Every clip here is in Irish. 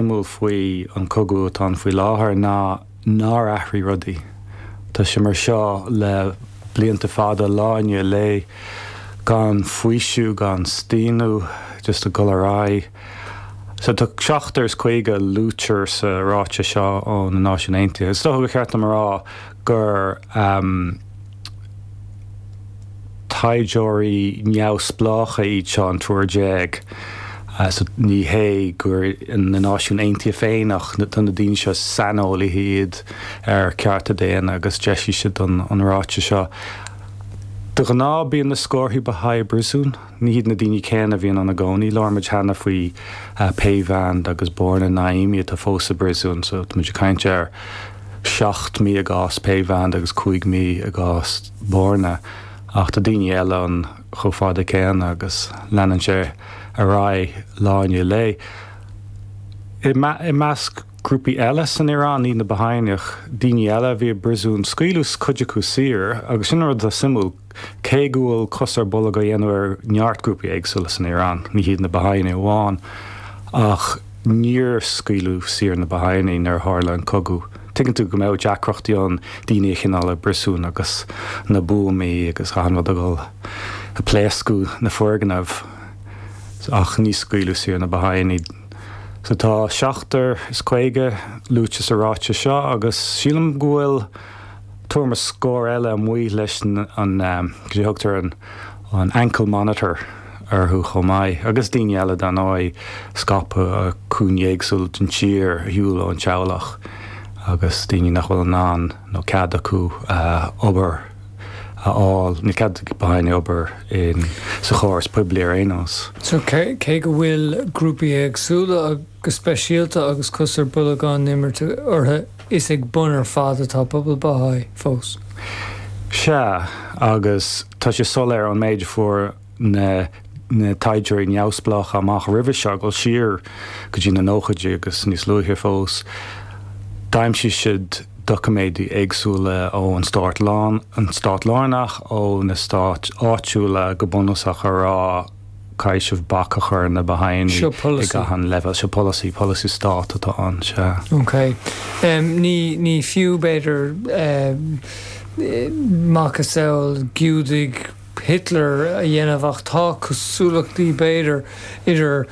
suimiúil faoi an cogadh atá ann faoi láthair ná nár athraigh rudaí. Tá sé mar seo le blianta fada, lá i ndiaidh lae, gan faoiseamh, gan staonadh, just ag dul ar aghaidh. So tá seachtar is caoga a luaitear sa ráiteas seo ó na Náisiúin Aontaithe. Is dócha gur cheart dom a rá gur. Taighdeoirí neamhspleácha iad seo, an triúr déag, so ní hé gur na Náisiúin Aontaithe féin ach tá na daoine seo, saineolaithe iad ar chearta daonna agus d'eisigh siad an ráiteas seo. De ghnáth bíonn na scórtha Bahá'í i bpríosún. Ní hiad na daoine céanna a bhíonn ann i gcónaí. Labhair muid cheana faoi Peyvand agus Borna Naimi atá fós i bpríosún. So tá muid ag caint ar seacht mí i gcás Peyvand agus cúig mí i gcás Borna. Ach tá daoine eile ann chomh fada céanna agus leanann sé ar aghaidh lá i ndiaidh lae. I i measc grúpaí eile san Iaráin, ní hiad na Bahá'í'nigh, daoine eile a bhí i bpríosún, scaoileadh cuid acu saor agus sin rud atá suimiúil. Cé go bhfuil cos ar bolg á dhéanamh ar neart grúpaí éagsúla san Iaráin, ní hiad na Bahá'í'nigh amháin, ach níor scaoileadh saor na Bahá'í'nigh nuair a tharla an cogadh. Tuigeann tú go mbeadh deacrachtaí ann daoine a choinneáil i bpríosún agus na buamaí agus achan rud ag dul ag pléascadh na foirgneamh ach níor scaoileadh saor na Bahá'í'nigh. So tá seachtar is caoga luaite sa ráiteas seo agus sílim go bhfuil, abair scór eile amuigh leis an, cad é a thugtar, an ankle monitor orthu chomh maith, agus daoine eile dar ndóigh, scaipthe ar chúinní éagsúla den tír, ar shiúl ón teaghlach agus daoine nach bhfuil in ann nó cead acu obair a fháil, níl cead ag Bahá'í'nigh obair sa chóras poiblí ar aon nós. So cé go bhfuil grúpaí éagsúla go speisialta agus cos ar bolg á imirt orthu Is ag bun ar fad atá pobal Baha'i fós. Sea, agus tá sé soiléir ón méid a fuair na taighdeoirí neamhspleácha amach roimhe seo, ag dul siar go dtí na nóchaidí agus níos luaithe fós, d'aimsigh siad doiciméidí éagsúla ón stát lárnach, ó na stáit áitiúla, go bunúsach, a rá, caithfear bac a chur ar na Bahá'í'nigh ag achan leibhéal. Seo polasaí, polasaí stáit atá ann, sea. OK. Em, ní, ní fiú, b'fhéidir, em, macasamhail Giúdaigh Hitler a dhéanamh ach tá cosúlachtaí, b'fhéidir, idir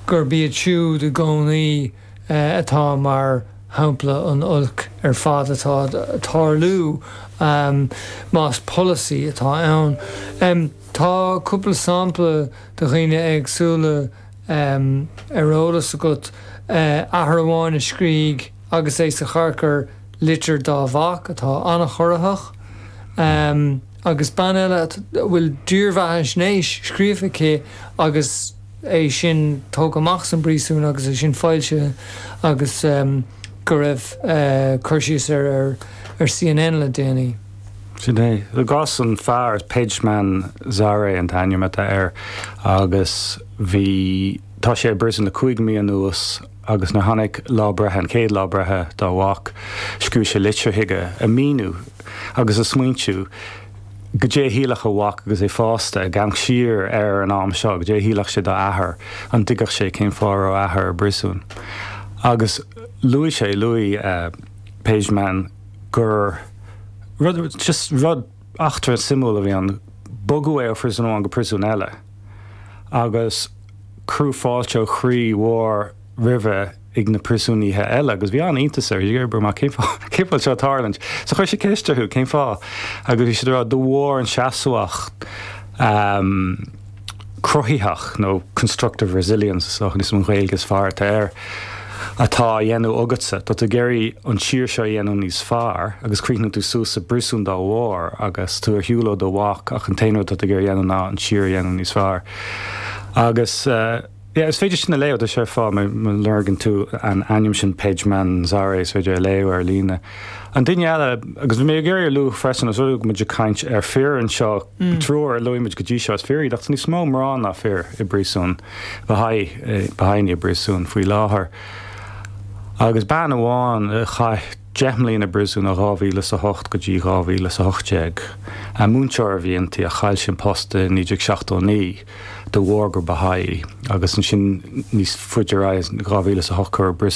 gurb iad siúd i gcónaí, eh, atá mar shampla an oilc ar fad atá ag tarlú, em, más polasaí atá ann. Em. Tá cúpla sampla de dhaoine éagsúla ar eolas agat, athair amháin a scríobh agus é sa charcair litir dá mhac atá an-chorraitheach, agus bean eile a bhfuil dírbheathaisnéis scríofa aici agus é sin tógtha amach san bpríosún agus é sin foilsithe agus go raibh cur síos air ar CNN le déanaí. Sin é. I gcás an fear, Pejman Zare an t-ainm atá air agus bhí, tá sé i bpríosún le cúig mí anuas agus nuair a tháinig lá breithe, an chéad lá breithe dá mhac, scríobh sé litir chuige ag míniú agus ag smaointiú goidé a shílfeadh a mhac agus é fásta ag amharc siar air an am seo, goidé a shílfeadh sé dá athair, an dtuigfeadh sé cén fáth a raibh a athair i bpriosún. Agus luaigh sé, luaigh Pejman, gur rud, just rud eachtra suimiúil a bhí ann, bogadh é ó phriosún amháin go príosún eile agus cuireadh fáilte ó chroí mhór roimhe ag na príosúnaigh eile agus bhí an-iontas air, bhí mar, cén fáth a bhfuil seo ag tarlaint? So chuir sé ceist orthu, cén fáth? Agus bhí siad ag rá, de bharr an seasmhacht, cruthaitheach, nó constructive resilience ach sin an Ghaeilge is fearr atá air, atá á dhéanamh agatsa. Tá tú ag iarraidh an tír seo a dhéanamh níos fearr agus críochnaíonn tú suas i bpríosún dá bharr agus tú ar shiúl ó do mhac ach an t-aon rud atá tú ag iarraidh a dhéanamh ná an tír a dhéanamh níos fearr. Agus. Yeah, is féidir sin a léamh, tá sé ar fáil, má lorgann tú an t-ainm sin, Pejman Zare, is féidir é a léamh ar líne. An duine eile, agus bhí mé ag iarraidh a lua freisin, tá muid ag caint ar fir anseo, an triúr a luaigh muid go dtí seo, is fir iad, ach tá níos mó mná ná fir i bpríosún, Baha'i i bpríosún faoi láthair. Agus bean amháin a chaith deich mbliana i bpríosún ó 2008 go dtí 2018, múinteoir a bhí inti a chaill sí an post i 1979. de bharr gur Baha'i í, agus ansin níos faide ar aghaidh in 2008 cuireadh i bprios.